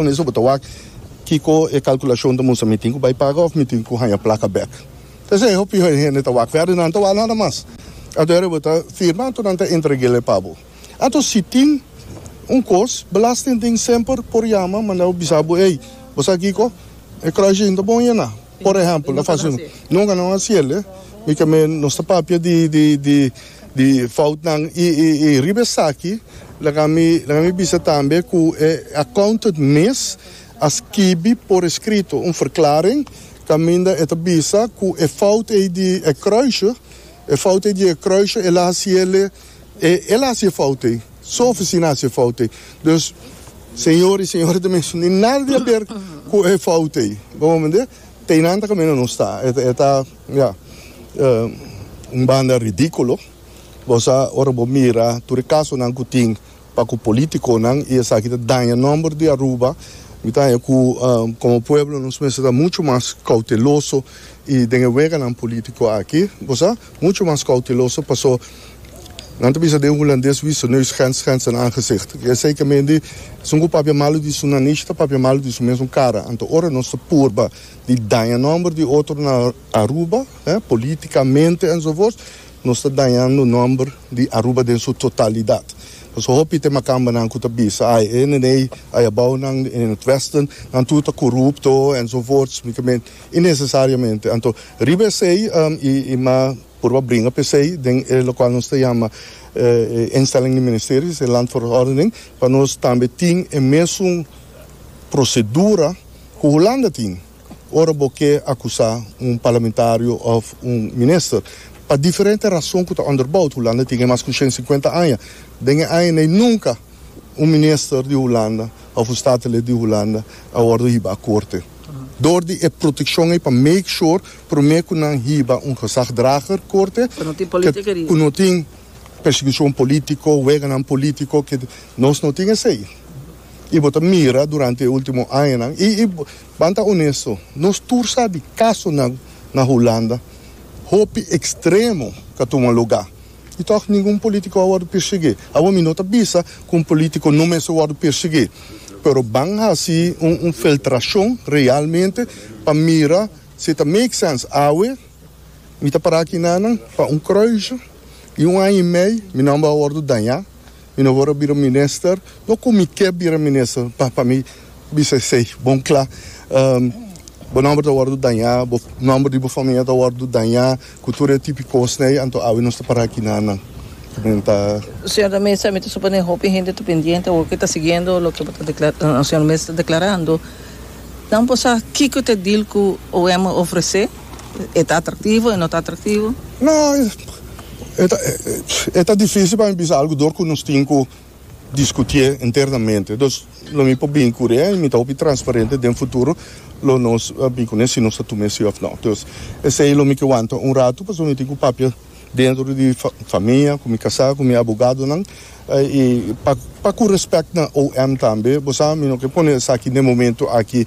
Con eso bo ta wak kico e calculacion ta mustra, mi tin cu bay paga of mi tin cu haya placa bek. P'esey hopi hende ta wak ferdi nan ta wak nada mas. Anto ere bo ta firma anto nan ta entregele pa bo. Anto si tin un cos belastingding semper por yama manda bisa bo ey bo sa kico e crushing ta bon yena. Por ehempel, ta fácil no. Nunca no a ciel, eh. Mi ta me, nos ta papia di, di, di, di foutnan. I, i, i riba esaki, laga mi, laga mi bisa tambe cu e accountant mes a skibi por escrito un verklaring caminda e ta bisa cu e fout ei di e kruisje, e fout ei di e kruisje e laha ciel. E el hasi e fout ei. Su oficina hasi e fout ei. Dus, señor i señora ta mester di nada di haber cu e fout ei. Bo bo mende? Teynan ta caminda nos ta. E ta, ya, un banda ridiculo. Bo sa, ora bo mira tur e casonan cu tin pa cu politiconan i esaki ta daña nomber di Aruba, mi ta haña cu como pueblo nos mester ta mucho mas cauteloso i den e weganan politico aki. Bo sa? Mucho mas cauteloso paso nan ta bisa den Hulandes wisse neus grens grens in aangezicht. Ke esei ke mindi esun ku papia malu di su nanish ta papia malu di su mesun kara. Anto ora nos ta purba di daña nomber di otro na Aruba, politikamente enzovoorts, nos ta dañando nomber di Aruba den su totalidat. Paso hopi te makambanan ku ta bisa ai e nenei ai abounan in het westen nan tur ta korupto enzovoorts. i nesesariamente. Anto riba esei i ma purba bringa pa esei den e lokual nos ta yama e instelling di ministeries, e landverordening, pa nos tambe tin e mesun prosedura ku Hulanda tin ora bo ke akusá un parlamentario òf un minister. Pa diferente rason ku ta onderboud, Hulanda tin e mas ku shen sinkuenta aña. Den e aña nei nunka un minister di Hulanda òf un statelid di Hulanda a wòrdu hiba korte. dor di e protekshon ei pa make sure promé ku nan hiba un gezagdrager korte ku no tin persekishon polítiko, weganan polítiko ke nos no tin esei. I bo ta mira durante e último añanan i i ban ta onesto nos tur sa di kasonan na Hulanda hopi ekstremo ka tuma lugá. Y tog ningun politico a wordo persegui. Awor mi no ta bisa cu un politico no mester wordo persegui, pero ban haci un un filtracion realmente pa mira si e ta make sense. Awe mi ta para aki nanan pa un croijo y un aña y mei mi nomber a wordo daña. Mi no wòrdu bira minister, no ku mi ke bira minister, pa pa mi bisa esei bon kla. Bo nòmber ta wòrdu dañá, bo nòmber di bo famia ta wòrdu dañá ku tur e tipi kosnan ei, anto awe nos ta para aki nan nan. Nan ta. Señor de Mesa, mi ta suponé hopi hende ta pendiente o ke ta siguiendo loke bo ta dekla, señor Mesa ta deklarando. Nan por sa kiko ta dil ku OM a ofresé? E ta atraktivo? E no ta atraktivo? No, e ta e ta difísil pa mi bisa algu dor ku nos tin ku diskutié internamente. Dus lo mi por bin kuri e mi ta hopi transparente den futuro lo nos bin kuné si nos ta tum'é si òf no. Dus esei lo mi ke wanta un ratu pasobra mi tin ku papia dentro di famia ku mi kasá ku mi abogadonan i pa pa ku respèk na OM tambe bo sa mi no ke pone esaki den momento aki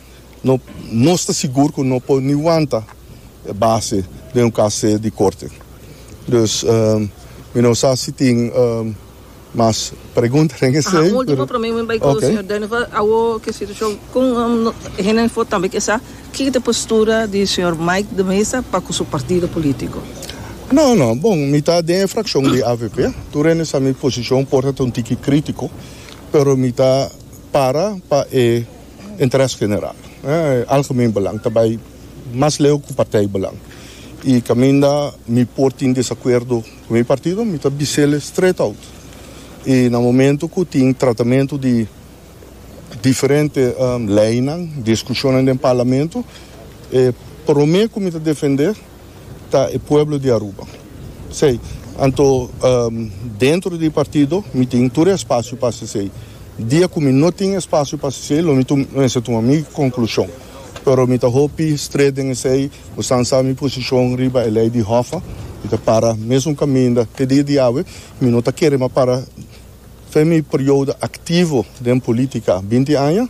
no nos ta sigur ku no por ni wanta e base den un kas se di korte. Dus mi no sa si tin mas pregunta den esei. Aha, un último promé mi bai ku señor Denifer, awo ku e situashon kon hende for tambe ke sa kiko ta e postura di señor Mike de Mesa pa ku su partido polítiko. No, no, bon, mi ta den e frakshon di avp, tur hende sa mi posishon por ta un tiki krítiko, pero mi ta para pa e. interes general, algemeen belang, ta bai mas leu ku partijbelang. I kaminda mi por tin desakuerdo ku mi partido, mi ta bis'e straight-out. I na momentu ku tin tratamentu di diferente leinan, diskushonnan den parlamentu, e promé ku mi ta defendé, ta e pueblo di Aruba. P'esei, anto dentro di partido mi tin tur e espacio pa haci esei. Dia cu mi no tin espacio pa haci esei lo mi ta mester tuma mi conclusion. Pero mi ta hopi stret den esei, bosnan sa mi position riba e ley di Hoffa, mi ta para mesun caminda te dia di awe, mi no ta kere mas para Fen mi periodo activo den politica binti aña,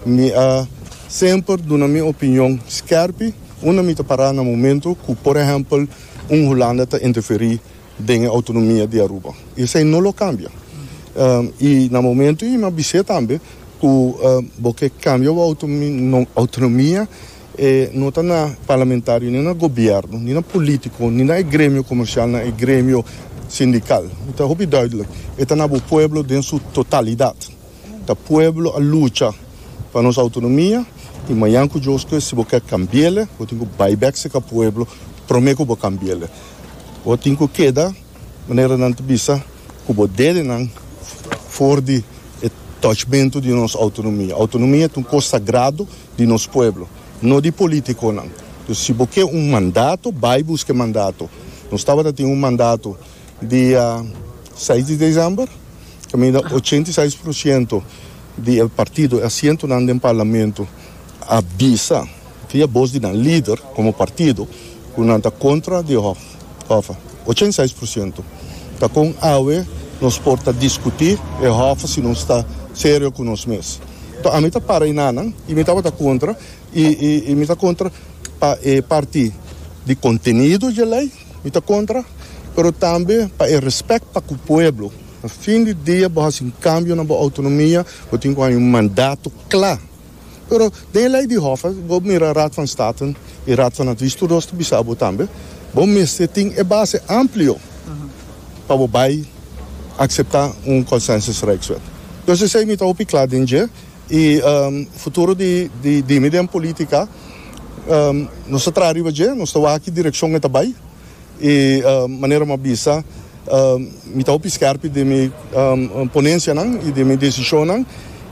mi a semper duna mi opinion skerpi unda mi ta para na momento cu por ehempel un Hulanda ta interferi den e autonomia di Aruba. Y esey no lo cambia. Y na momento y mi a bis'e tambe cu bo ke cambia bo autonomia, E no ta na parlamentario, ni na gobierno, ni na politico, ni na e gremio comercial, na e gremio sindical. Mi ta hopi duidelijk, e ta na bo pueblo den su totalidad. Ta pueblo a lucha pa nos autonomia y mañan cu djoske si bo kier cambiele, bo tin cu bay bek seca pueblo prome cu bo cambiele. Bo tin cu keda manera nan ta bisa cu bo dedenan for di e touchmento di nos autonomia. Autonomia ta un cos sagrado. di nos pueblo, no di politiconan. Entonces si bo ke un mandato, bay buska e mandato. Nos tabata tin un mandato dia seis di december, caminda ochenta y seis por ciento di el partido, e asientonan den parlamento a bisa via bos di nan lider como partido cu nan ta contra di. Hòfa, ochenta i seis por siento. Ta kon awe nos por ta diskutí e hòfa si nos ta serio ku nos mes. Tò, ami ta para enanan i mi tabata kontra i i mi ta kontra pa e parti di kontenido dje lei, mi ta kontra, pero tambe pa e respèk pa ku pueblo. Na fin di dia bo hasi un kambio na bo outonomia, bo tin ku haña un mandato kla. Pero den e lei di Hof bo mira Raad van State i Raad van Advies tur dos ta bisa bo tambe bo mester tin e base amplio pa bo bai akseptá un Consensus Rijkswet. Dus esei mi ta hopi kla den dje i futuro di dimi den polítika nos ta traha riba dje, nos ta wak aki direkshon e ta bai E manera m'a bisa, mi ta hopi skèrpi den mi ponensianan i den mi desishonnan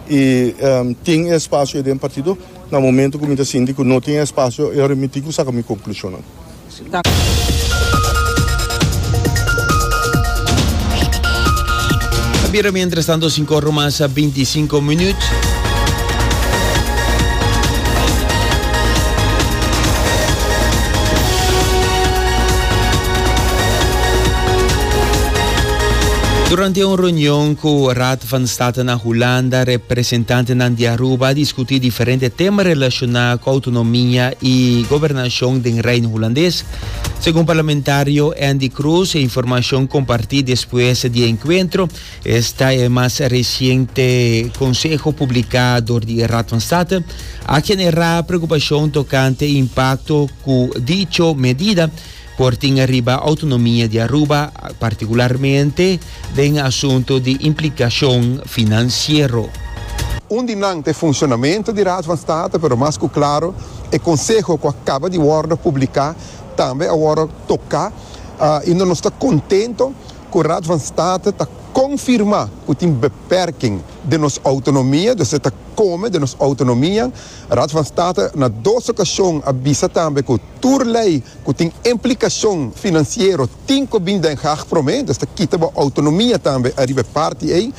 i tin e spasio den partido. Na momentu ku mi ta sinti ku no tin e spasio, e remití ku saka mi konklushonnan. Ta bira miéntras tanto sinku ora mas binti i sinku minüt. Durante un reunion cu Raad van State na Hulanda, representantenan di Aruba a discuti diferente tema relaciona cu autonomia y gobernacion den Reino Hulandes. Segun parlamentario Andy Cruz, e informacion comparti despues di e encuentro Esta e mas reciente conseho publica door di e Raad van State a genera preocupacion tocante e impacto cu dicho medida por tin riba autonomia di Aruba, particularmente den asunto di implicacion financiero. Un di nan ta e funcionamento di Raad van State, pero mas cu claro e conseho cu a caba di wordo publica tambe a wordo toca y nos ta contento Ku Raad van State ta konfirmá ku tin beperking den nos outonomia, dus e ta kome den nos outonomia. Raad van State na dos okashon a bisa tambe ku tur lei ku tin implikashon finansiero tin ku bin Den Haag promé, dus ta kita bo outonomia tambe ariba e parti ei.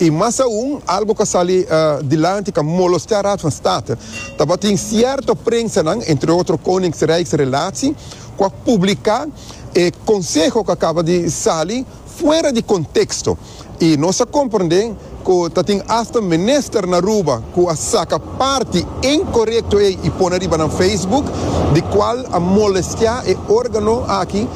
I mas aun, algu ku a sali dilanti ku a molostea Raad van State, tabatin sierto prensanan, entre otro Koninkrijksrelatie, cu a publica e conseho cu a caba di sali fuera di contexto y nos a comprende cu ta tin hasta minister na Aruba cu a saca parti incorecto ey y pone riba nan Facebook di cual a molestia e organo aki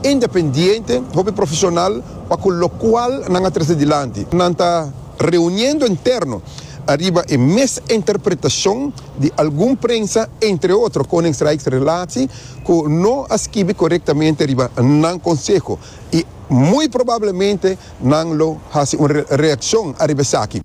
independiente hopi profesional pa cu locual nan a trece dilanti nan ta reuniendo interno ariba e mes interpretacion di algun prensa, entre otro Koningsrijks Relatie, ku no a skibi korektamente riba nan konseho i muy probablemente nan lo hasi un reakshon ariba esaki.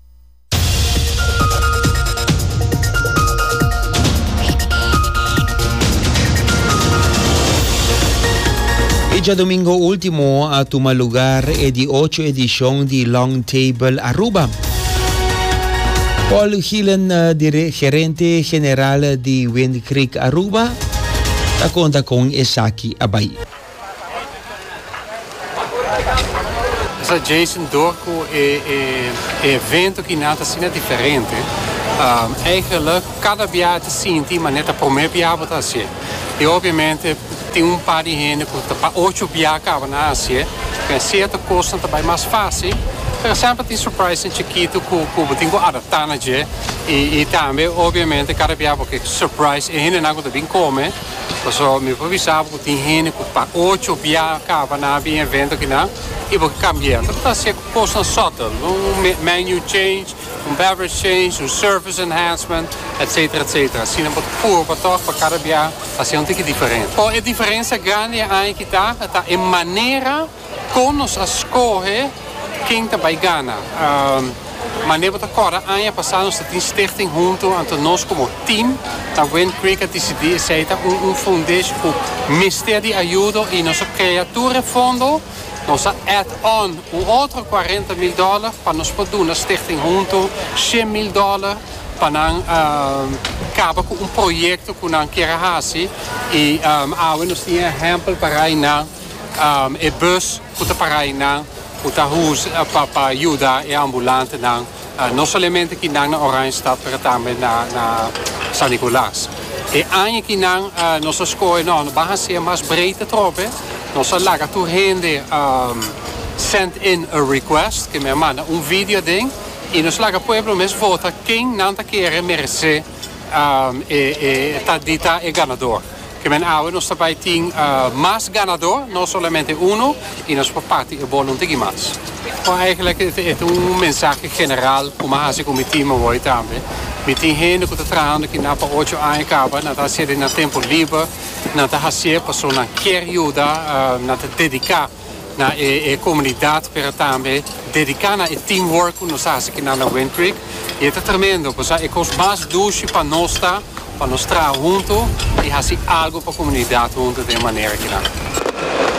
E djadomingo último a tuma lugar e di ocho edishon di Long Table Aruba. Paul Gielen, dire, gerente general di Wind Creek Aruba, ta conta con esaki a bai. Esa Jason door cu e e evento ki nan ta asina diferente eigenlik cada bia ta sinti manera ta prome bia bo ta hacié y obviamente. Tin un par di hende cu ta pa ocho bia caba na hacié, den cierto cosnan ta bay mas fácil. Por ehemplo tin surprisnan chiquito cu cu bo tin cu adaptá na dje. Y y tambe obviamente cada bia bo ke surprise e hendenan cu ta bin come. Paso mi por bisa bo cu tin hende cu pa ocho bia caba na bin evento akinan y bo ke cambi'e. Bo ta hacié cosnan subtle, un menu change. Un beverage change, un service enhancement, etc. Etc. Asina bo ta puru pa tok pa kada bia hasi un tiki diferente. Por e diferensia grandi e aña ki ta, ta e manera kon nos a skohe ken ta bai gana. Mane bo ta korda aña pasa nos ta tin stichting huntu, anto nos komo team na Wind Creek a disidí esei ta un un fondesh ku mester di ayudo i nos a krea tur e fondo. Nos a add on un otro cuarenta mil dollar pa nos por duna Stichting Hunto shen mil dollar pa nan caba cu un proyecto cu nan kier a haci y awe nos tin e ehempel parai nan, e bus cu ta parai nan cu ta pa yuda e ambulantenan No solamente ki nan na Oranjestad pero tambe na San Nicolas. E aña ki nan nos a skohe no no ban hacier mas breed atrobe nos a laga tur hende send in a request, ke men a manda un video aden y nos laga pueblo mes vota ken nan ta kere merece. e ta di ta e ganador. Kimen awe nos ta bai tin mas ganador, no solamente uno, y nos por parti e bolo un tiki mas. Bo eigenlijk e ta un mensahe general cu mi a haci cu mi team awoy tambe. Mi tin hende cu ta trahando kina pa ocho aña caba, nan ta haci'e den nan tempo liber, nan ta haci'e pasobra nan kier yuda, nan ta dedica. na e e comunidad pero tambe dedica na e team work cu nos haci aquí na Wind Creek y e ta tremendo cosa e cos mas dushi pa nos ta pa nos traha hunto y haci algo pa comunidad hunto den e manera aki nan.